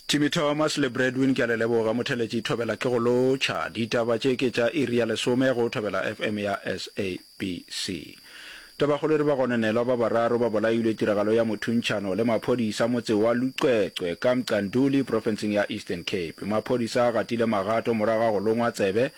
Timmy Thomas le Bradwin ke a le leboga motheletši thobela ke go lotšha ditaba tše ke tša iri ya lesome go thobela FM ya SABC Tabakgolo re ba gone nelwa ba bararo ba bolailwe tiragalo ya mothuntšhano le maphodisa motse wa Lucwecwe ka Mcanduli profenseng ya Eastern Cape maphodisa a gatile magato morago ga go longwa tsebe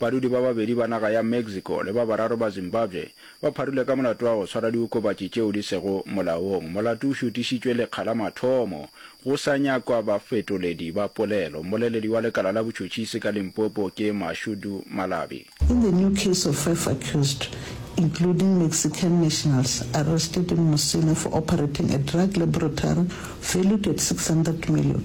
Badudi ba babedi ba naga ya Mexico le ba bararo ba Zimbabwe ba pharile ka molato wa go tshwara diokobatši tšeo di sego molaong. Molato o šutišitšwe lekga la mathomo go sa nyakwa bafetoledi ba polelo. Mmoleledi wa lekala la botšhotšhisi ka Limpopo ke Mashudu Malabi. In the new case of five accused, including Mexican nationals arrested in Musina for operating a drug laboratory valued at 600 million,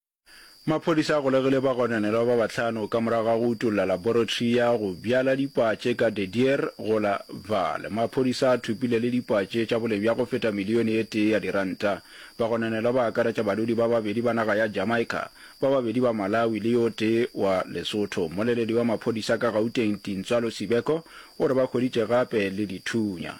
Maphodisa a golegile bagononelwa ba bahlano ka morago ga go utolla laboratory ya go bjala dipatše ka De Dier go la Vaal. Maphodisa a thopile le dipatše tša boleng bja go feta milione e tee ya diranta. Bagononelwa ba akaretša badudi ba babedi ba naga ya Jamaica, ba babedi ba Malawi le yo tee wa Lesotho. Mmoleledi wa maphodisa ka Gauteng, Tintswalo Sibeko, o re ba hweditše gape le dithunya.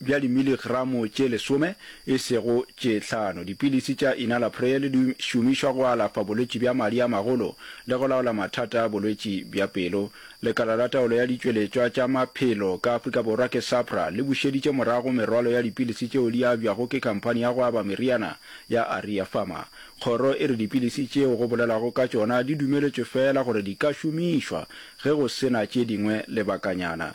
bja dimiligramo tše lesome, e sego tše hlano. Dipilisi tša enalapril di šomišwa go alafa bolwetši bja madi a magolo le go laola mathata a bolwetši bja pelo. Lekala la Taolo ya Ditšweletšwa tša Maphelo ka Afrika Borwa ke SAHPRA le bušeditše morago merwalo ya dipilisi tšeo di abjwago ke khamphani ya go aba meriana ya Aria Pharma. Kgoro e re dipilisi tšeo go bolelwago ka tšona di dumeletšwe feela gore di ka šomišwa ge go se na tše dingwe lebakanyana.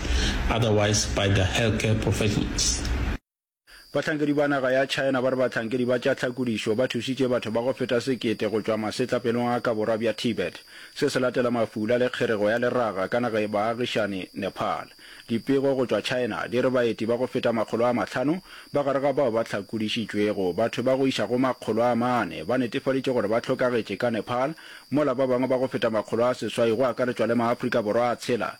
otherwise by the healthcare professionals. Bahlankedi ba naga ya China ba re bahlankedi ba tša tlhakodišo ba thušitše batho ba go feta sekete go tšwa masetlapelong a ka borwa bja Tibet. Se se latela mafula le kgerego ya leraga ka naga e baagišane, Nepal. Dipego go tšwa China di re baeti ba go feta makgolo a mahlano ba gare ga bao ba hlakodišitšwego, batho ba go iša go makgolo a mane ba netefaditše gore ba hlokagetše ka Nepal, mola ba bangwe ba go feta makgolo a seswai go akaretšwa le maAfrika Borwa a tshela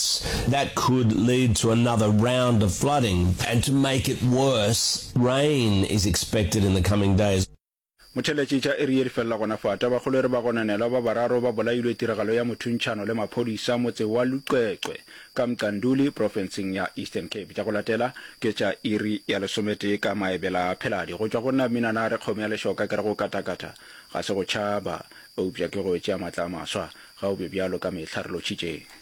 droughts that could lead to another round of flooding and to make it worse, rain is expected in the coming days. Motheeletšetša iri ye di felela gona fa, tabakgolo e re bagononelwa ba bararo ba bolailwe tiragalo ya mothuntšhano le maphodisa motse wa Luxexwe ka Mqanduli profenseng ya Eastern Cape. Tša go latela ke tša iri ya lesometee ka maebela a pheladi. Go tšwa go nna Mminana a re kgomo ya lešoka ke re go katakata ga se go tšhaba eupša ke go tšea matla a maswa. Ga o be bjalo ka mehla re lotšhitšeng.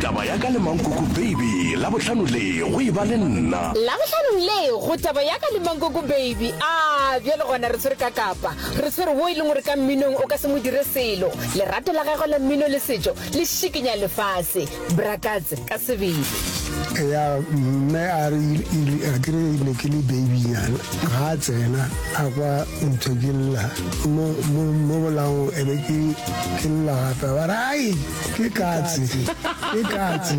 Taba ya ka le Mankoko Baby, Labohlano le, go e ba le nna. Labohlano le, go Taba ya ka le Mankoko Baby, a bjale gona re tshwere ka kapa, re tshwere wo e leng gore ka mminong o ka se mo dire selo. Lerato la gagwe la mmino le setšo le šikinya lefase. Brakats ka sebele. Eya mme a re a kere ne ke le babynyana ga a tsena a kwa nthekella mo mo mo bolango ebe ke ke lla gape ba re ai ke katse ke katse